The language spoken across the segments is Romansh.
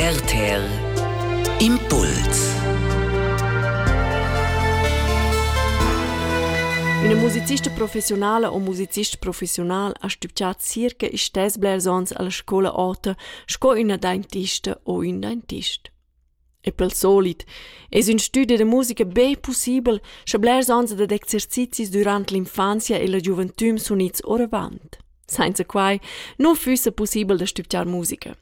RTL Impuls Üna musicista professionala o musicist professional ha stübgià circa istess blers ons alla scoula ota sco üna dentista o ün dentist. E pel solit es ün stüdi da musica be pussibel sche blers ons dad exercizis durant l'infanzia e la giuventüm sun its oravant. Sainza quai nu füssa pussibel da stübgiar musica.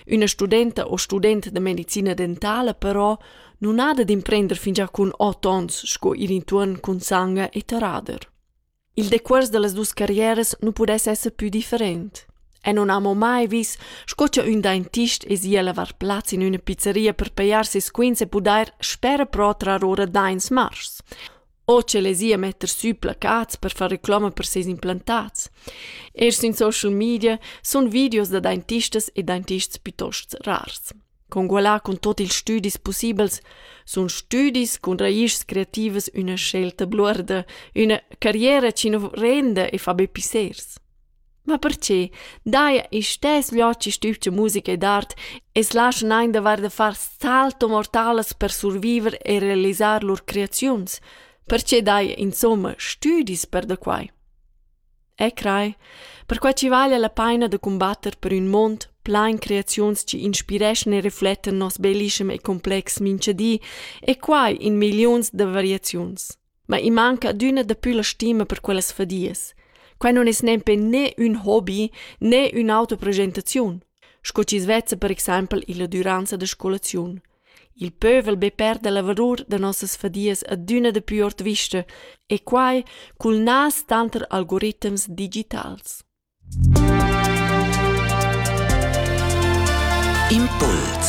Üna studenta o student da medicina dentala però nun ha da d'imprender fingià cun ot ons sco ir intuorn cun sanga e terrader. Il decuors da las duos carrieras nu pudess esser pü different. E non amo mai vis sco cha ün dentist esi a lavar plaz in üna pizzeria per pajar ses quints e pudair spera però trar ora dains mars. o che lezia metter sü placats per far reclama per seis implantats. Eir sün social media sun videos da dentistas e dentists pitost rars. Congualà cun tot ils stüdis pussibels sun stüdis cun raischs creativas üna scelta bluorda, üna carriera chi nu renda e fa be pissers. Ma perche? Dai istess viaci stübgia musica ed art e's laschan eir davair da far salto mortalas per surviver e realisar lur creaziuns. Perche dai insomma stüdis per da quai? E crai, perquai chi vaglia la paina da cumbatter per ün mond plain creaziuns chi inspireschan e reflettan nos bellischem e complex mincha di, e quai in milliuns da variaziuns. Ma i manca adüna dapü la stima per quellas fadias. Quai non es nempe né ün hobi né ün'autoprogetaziun, sco chi's vezza per exaimpel illa düranza da scolaziun. Il pövel be perda la valur da nossas fadias adüna dapü ord vista e quai cul nas tanter algoritms digitals. Impuls